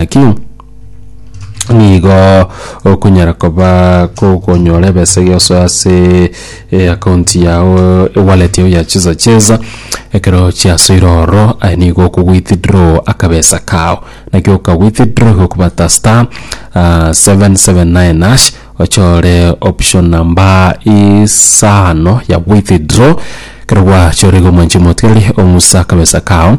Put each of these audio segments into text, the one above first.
Naki nigo okonyara koba kogonyora ebesa eria osoa ase account yago ewallet yago ya chisa chesa ekero chiasoire ororo aye nigo oko withdraw akabesa kao naki oka withdraw igo okobwata star seven seven nine hash ochore option namba isano ya withdraw ekero gwachorire igo omwanchi omotebie ng'a omusa akabesa kao.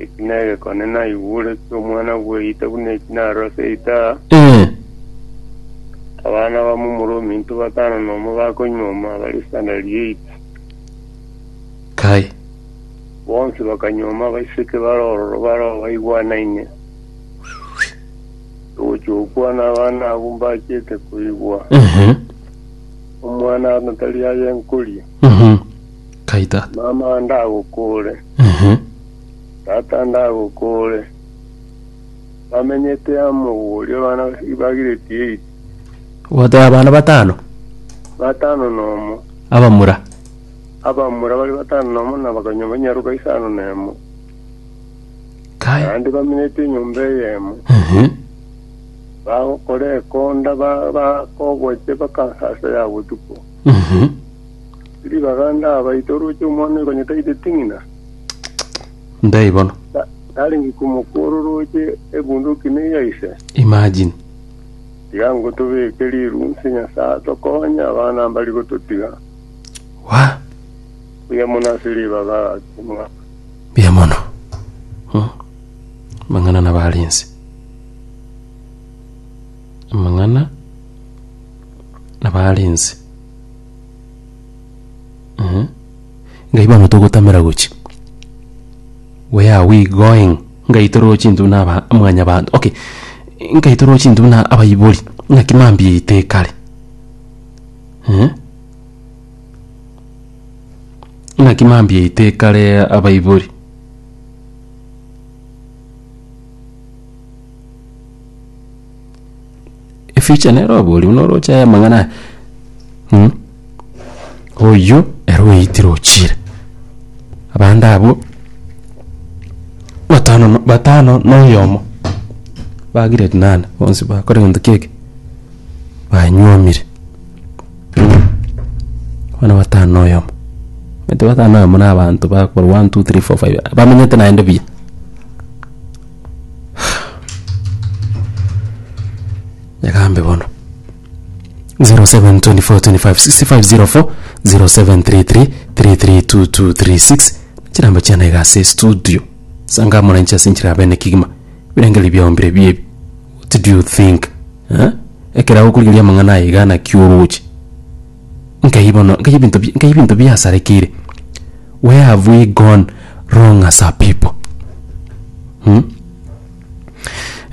Eki negekone naigure ki'omwana bw'eita buna eki narose itaha, Ee, abana ba momura ominto batano nomo bakonyuoma bare isanda ri'eita. kai. Bonsi bakanyuoma abaiseke bare ororo barao baigwanaine. Togochia gokwana abana abwo mbachete koigwa, Ehe. omwana aratari aye nkoria. Mhm. Kai tata. Mama ndagokore. Ehe. Tata ndagokore. Bamenyete amo oria bana ibagireti eight. Gwateba abana batano? Batano nomo. Abamura? Abamura bari batano nomo na bakanyomba enyaruka isano nemo. Kai. Naende bamenyete enyomba eyemo. Ehe. Bagokora ekonda ba- bakogocha baka asa ya botuko. Ehe. Tiri baganda aba ite oroche omwana oyo konyete aite ting'ina. Ndai bono. Ta- Tarenge komokuora oroche ebunduki ne ya ise. Imagine. Tiga ngotobeke riru nse Nyasaye tokonye abana mbari gototiga. Wa. Buya mono ase ribaga ase mwa. Buya mono. Hmm. Mang'ana na barense. Mang'ana na barense. Mh, ngai bono togotamera gochia, where are we going? Ngai toroche intwe buna aba- mwanyabanto, okay, ngai toroche intwe buna abaibori, naki mambia yaito ekare. Mh, naki mambia yaito ekare abaibori. efuture nere oborie buna oroche aya amang'ana aya mh oyio ere oyeitire ochire abande abwo batano na batano na oyomo ba grade nane bonsi bakora egento kio eke banywomire abana batano na oyomo omanyete batano na oyomo na abanto bakorwa one, two, three, four, five bamenyete naende buya. nyagambe bono 0724256504 0733332236 chirambe chiana iga ase studio sanga moranchi ase enchera bene kigima birengeri biaombire biebi what do you think eh? ekero agokorigeria amang'ana aye iga naki oroche Nkai bono, nkai ebinto bi- nkai ebinto biasarekeire. Where have we gone wrong as a people? Hmm?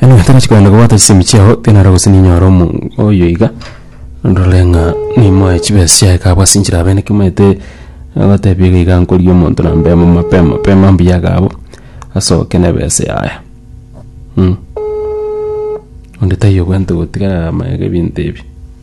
Eno gento nachi kogenda kobwata chisemi chiao, tenaro gose ninyore omo oyo iga, ndore ng'a nimoe chibesa chiaye kabwa ase enchera abene kimoete gotebia iga iga nkoria omonto na mbemo mapema mapema mbuya iga abwo, asoke na ebese yaye. Hmm. Onde taiyo bwente gotiga amaega ebinto ebi.